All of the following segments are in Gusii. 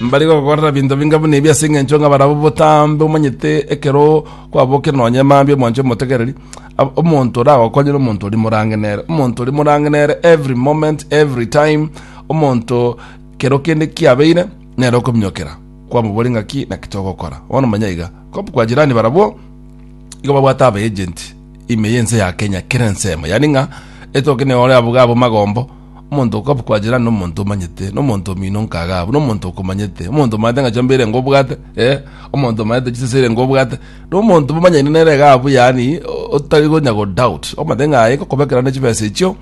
Mbari gokorera binto binga buna ebi ase engencho ng'a barabwo botambe omanyete ekero kwabokire nonye mambia omwancho omotegereri ab- omonto oragokonyere omonto oria morange nere omonto oria morange nere every moment every time omonto kero kende kiabeire nere okominyokera kwamobori ng'aki naki togokora bono manya iga kop kwa jirani barabwo igo babwate aba agent ime ya ense ya Kenya kera ensemo yaani ng'a etoke nere ore abwo iga abwo magombo Omonto okabukwa ajirane nomonto omanyete, na omonto omino nkaga abwo, na omonto okomanyete, omonto omanyete ng'a chiomba erenge obwate, eh, omonto omanyete chisesa erenge obwate, na omonto momanyaine nere iga abwo, yaani o- otari gonya go doubt, omanyete ng'a aye ngokoba ekero nde chibesa echio,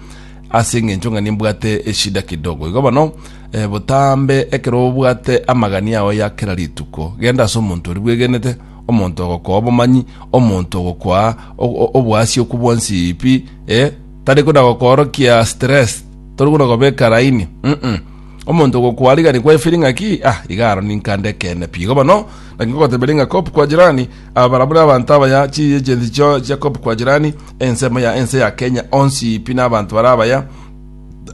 ase eng'encho ng'a nimbwate eshida kidogo. Igo bono, eh, botambe ekero obwate amagani ao ya kera rituko, genda ase omonto oria bwegenete, omonto ogokoa obomanyi, omonto ogokoa o- o- oboasia okwo bwonsi pi, eh, Tari buna gokoorokia stress, tori buna gobeka laini, mm omonto ogokwarigia nikwa efiri ng'aki, ah, iga aro ninka ndekeene pi. Igo bono, naki ngogoteberia ng'a Cop Kwa Jirani, aba barabwo nabanto abaya, chiiyi chi'ense chio chia Cop Kwa Jirani, ensemo ya ense ya Kenya onsi pi nabanto bare abaya,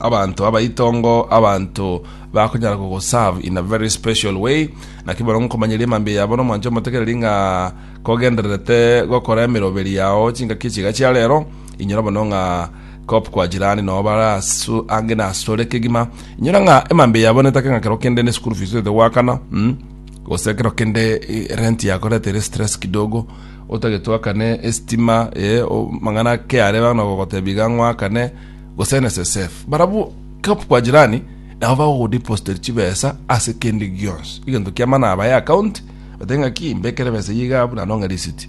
abanto abaitongo, abanto bakonyara kogoserve in a very special way, naki bono nkomanyeria emambia yabo na omwancho omotegereri ng'a kogendererete gokora emeroberi yao chingaki echiga chia rero, Inyora mono ng'a kop kwa jirani no bara asu ange na asore kegima inyora ng'a emambe yabo netake ng'a kero kende ne school fees ete gwakana mm? gose kero kende eh, rent yakoretere stress kidogo otagetwakane estima eh, o- mang'ana keare bana gogotebiga ng'wakane gose NSSF barabu kop kwa jirani nabo bagogodepositer chibesa ase kende gionsi egento kiamana abaye account batenge ng'a ki mbekere besa yiga buna nong'e risiti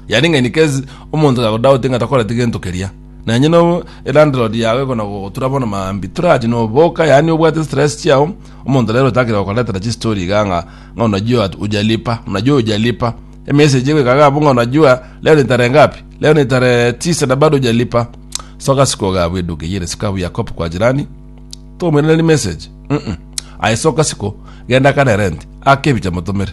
Yaring'ani kesi omonto gakodaute ng'a takoreti gento keria. Na onye no elandlord yao ekona gogotura bono maambia torache noboka yaani obwate stress chiao omonto rero otakire gokoretera chistory iga ng'a ng'a unajua at- ujalipa unajua ujalipa emessage egoika iga abwo ng'a unajua leo ni tarehe ngapi leo ni tarehe tisa na bado ujalipa soka siku iga abwo eduka eyere sika abwo ya cop kwa jirani tomoiraneria message mm aisoka siko genda kare rent ake ebicha motomere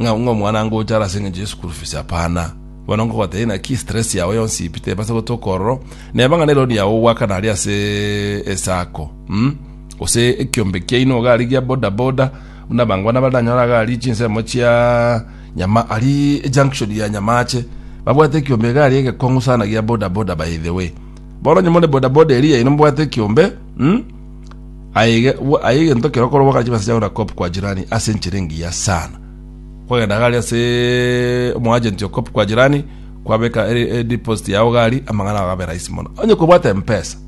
ng'a ng'a omwana angocha are ase eng'encho ye school fees hapana bono ngogotebi naki stress yao yonsi ipite ebase gotoka ororo neba ng'a neroni yao ogwakana aria ase esako mm? gose ekiombe kiaino iga aria gia boda boda buna abangwana baranyora iga aria chinsemo chia nyama ari junction ya nyamache babwate ekiombe iga aria egekong'u sana gia boda boda by the way bono onye more boda boda eria yaino mbwate ekiombe mm? Aye aye gento kero korwa bakachi base chagora cop kwa jirani ase enchera engiya sana kwagenda gari ase omoagent o cop kwa jirani kwabeka e- e deposit yao gari amang'ana ago abe rahisi mono onye kobwate mpesa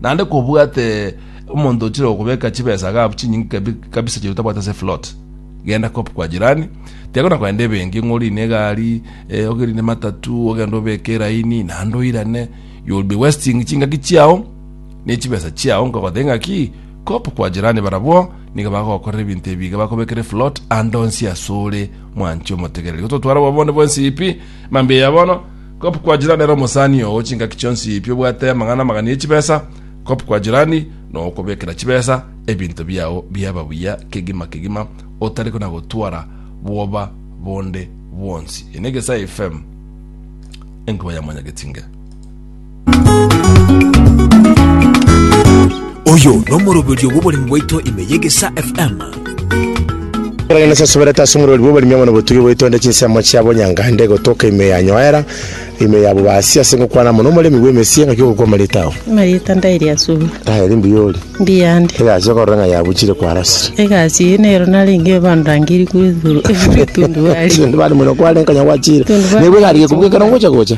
naende kobwate omonto ochire okobeka chibesa ga chinyinge kabi- kabisa chiri tabwate ase float genda cop kwa jirani tiga na kogenda ebenki ng'a orine egari eh, ogerine matatu ogende obeke eraini naende oirane you will be wasting chingaki chiao ne chibesa chiao nkogothe ng'aki kop kwa jirani barabwo nigo bagokorera ebinto ebi iga bakobekere float ande onsi asore mwanchi omotegereri gototwara obobonde bwensi ipi mambia ya bono kop kwa jirani ere omosani oo chingaki chionsi ipi obwate amang'ana amagana ye chibesa kop kwa jirani nokobekera chibesa ebinto biao biaba buya kegima kegima otari kona gotwara bwoba bonde bwonsi ene gesae fm enkuba ya mwanyagetinge Oyo nomoroberio bw'oboremi bwaito ime y'Egesaa FM. Ekero Nyasae asuberete ase omorweri bw'oboremi amo nobotugi bwaito ande chinsemo chia bonyangande gotoka ime ya nyoera, ime ya bobasi ase gokwana amo nomoremi bw'emesie ngaki ogokwama rieta ao. Amarieta ndairi asubwa. Ndaeri mbuya ori. Mbuya ande. Egasi okorora ng'a yabuchire kwarosire. Egasi eye nero narenge bandangiri kuri thuru kuri tundubari. Tundubari mono kware nkanya gwachire. Tundubari. Nigo egarigia kubuga ekero ngocha gocha.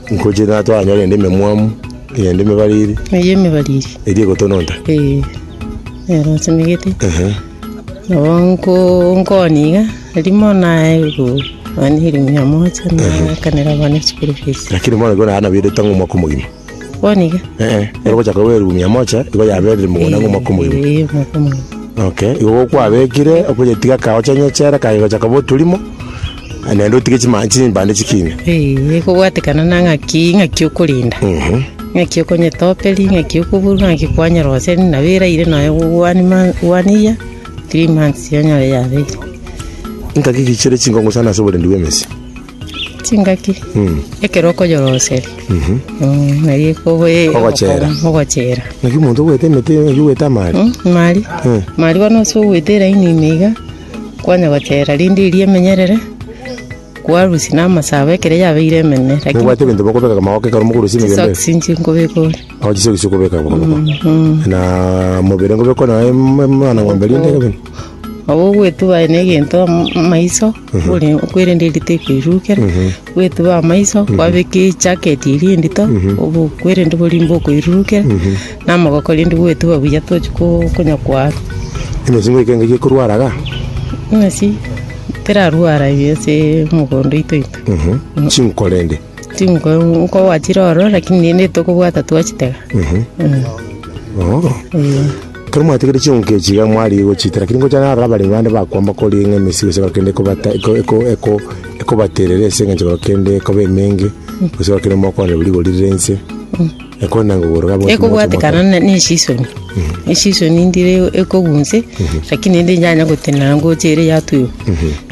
Ngochie naye twanyore ende ememwamu, ende emebariri, Eyio emebariri. eria egotononta. Eh, nero nsemegete. Ehe. Nabo nko nkoni iga, rimo naye ru mani erimia ya moja nakanera abana school fees. Lakini bono igo naye nabeire tang'o omwaka omogima. Boni iga? Eeh, ero gochaka koba erumu mia moja, igo yaberire mogona ng'a omwaka omogima. Eh, omwaka omogima. Okay, igo gokwabekire, okonyetiga kagocha onyechere, kare gocha koba oturimo. Naende otige chimanya chimbande chikiina. Ee, kobwatekana na ng'aki, ng'aki okorenda. Ng'aki okonyetoperi, ng'aki okoburwa, ng'aki kwanyeroseria, nabo eraire nonya go- one month, one year, three months onyore yabeire. Ngaki ki chire chinkong'u sana ase oborendi bw'emesio? Chingaki, ekero okoyoroseria, mm, nari ekobe- Ogochera. ogochera. Ngaki omonto ogoeta emete, ngaki ogoeta amaari. Mm, mari, Eh. mari bono ase ogoeta eraini ime iga, Kwanya gochera rinde eria emenyerere, kwarusia namasabo ekero yabeire emenene, lakini Mobwate ebinto bikobeka magoko ekero mokorusia emegendo eye? chisokisi inche nkobeka ore. Ao chisokisi chikobeka magoko. Na mobere nkobeka naye mwana ng'ombe rinde kabere. Nabo ogwetuba aye na egento am- amaiso, ore- okwerende eria tekoirukera. Gwetube amaiso, kwabeke ejaketi eria endito, obokwe rende borie mbokoirurukera, na amagoko rende bwetube buya tochi ko- konya koarwa. Eng'encho ngoika engaki ekorwara iga. Ng'a si, terarwara eye ase mogondo oito oito. Chinko rende. Chinko nkogwachire ororo, lakini rende tokobwata twachitega. Oho. Ee. Ekero mwatigire ching'oki echi iga mwarigia gochiita, lakini gochia naro abaremi bande bakwamba koria ng'a emesigo ase ekero kende ekobata eko- eko- eko- ekobaterera ense, engencho ekero kende ekoba emenge, gose ekero kende mokoonderwa rigori rire ense, ekore na ngogoro iga abwate ekobwatekana na- na esisoni esisoni ndire ekogunse lakini ende yanya gotenena ngochia ere yatuirwa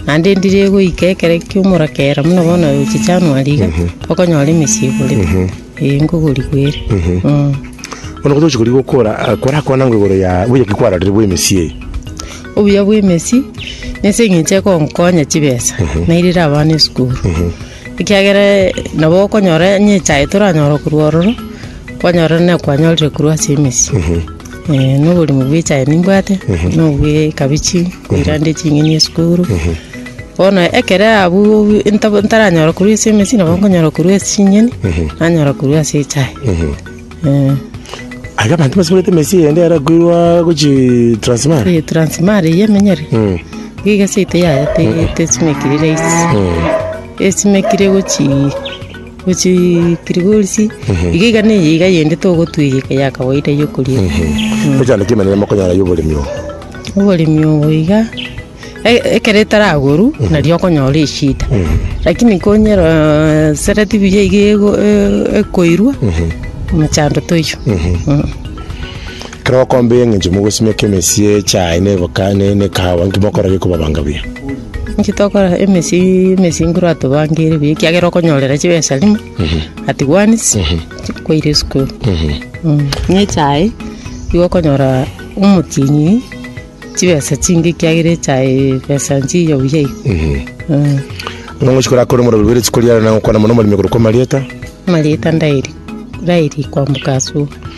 naende ndire egoika ekero kia omorakera buna bono ochicha January iga okonyora emesigo ore. Ee, nkogorigwa ere. Bono gotoche korigwa okora, eh, korakwana ngwa igoro ya buya ki kwarorire bwa emesii eye. Obuya bwa emesi nese eng'encho ekonkonya chibesa nairire abana esukuru ekiagera eh, nabo okonyora onye echae toranyora korwa ororo kwanyora na kwanyorire korwa ase emesi Eh, na oborimo bwa echae nimbwate na obwa ekabichi Oirande ching'eni esukuru. Bono ekero abwo nta- ntaranyora korwa ase emesi, nabo nkonyora korwa ase ching'eni, nanyora korwa ase echae. Eh, Aye abanto basimorete emesi eyende yare koirwa gochi transmara. eh, Transmara eye emenyere, Mm. iga egese ite yaye te- tesimekire rahisi. Mm. Esimekire gochii. Gochia Giligosi, iga iga neye iga yende togotwegeka ya kawaida ya okoria. Gochia naki emenene mokonyora y'oboremi obo? Oboremi obo iga, e- ekero etaragorwa, nario okonyora eshida. Lakini konyero sereti buya iga ego- e- ekoirwa, emechando toiyo. Mm. Ekero okomba eng'encho mogosimeka emesia echae na eboka- na- na ekahawa, nki mokorora gekoba banga buya? Inche tokora emesi emesinguru atobangeire buya ekiagera okonyorera chibesa rimo, at once, kwaire esukuru. Buna echae, nigo okonyora omotienyi chibesa chinge ekiagera echae besa nchiya buya iga. Eh, Ng'a ng'ochi korakore omorero bwire chiko riare na gokwana mono omoremia korokwa amarieta. Amarieta ndairi, ndairi kwamboka asuba.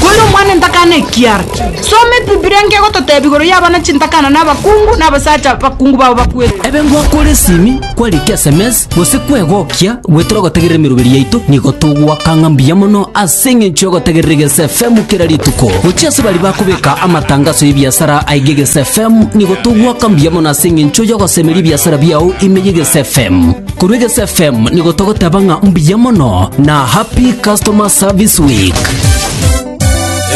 Kore omwana ntakana ekiara. Soma Ebibilia enke egototebia igoro y'abana chintakana na abakungu na abasacha abakungu bao bakwete. Ebe ngwakore esimi, kwarike sms, gose kwegokia, gwetere ogotegerera emeroberi yaito, nigo togwakang'a mbuya mono ase. Ase engencho y'ogotegerera Egese FM kera rituko, gochia ase baria bakobeka amatangaso y'ebiasara aige Egese FM, nigo togoaka mbuya mono ase engencho y'ogosemeria ebiasara biao ime y'Egese FM. Korwa Egese FM nigo togoteba ng'a mbuya mono na Happy Customer Service Week.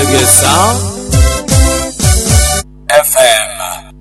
Egesa FM.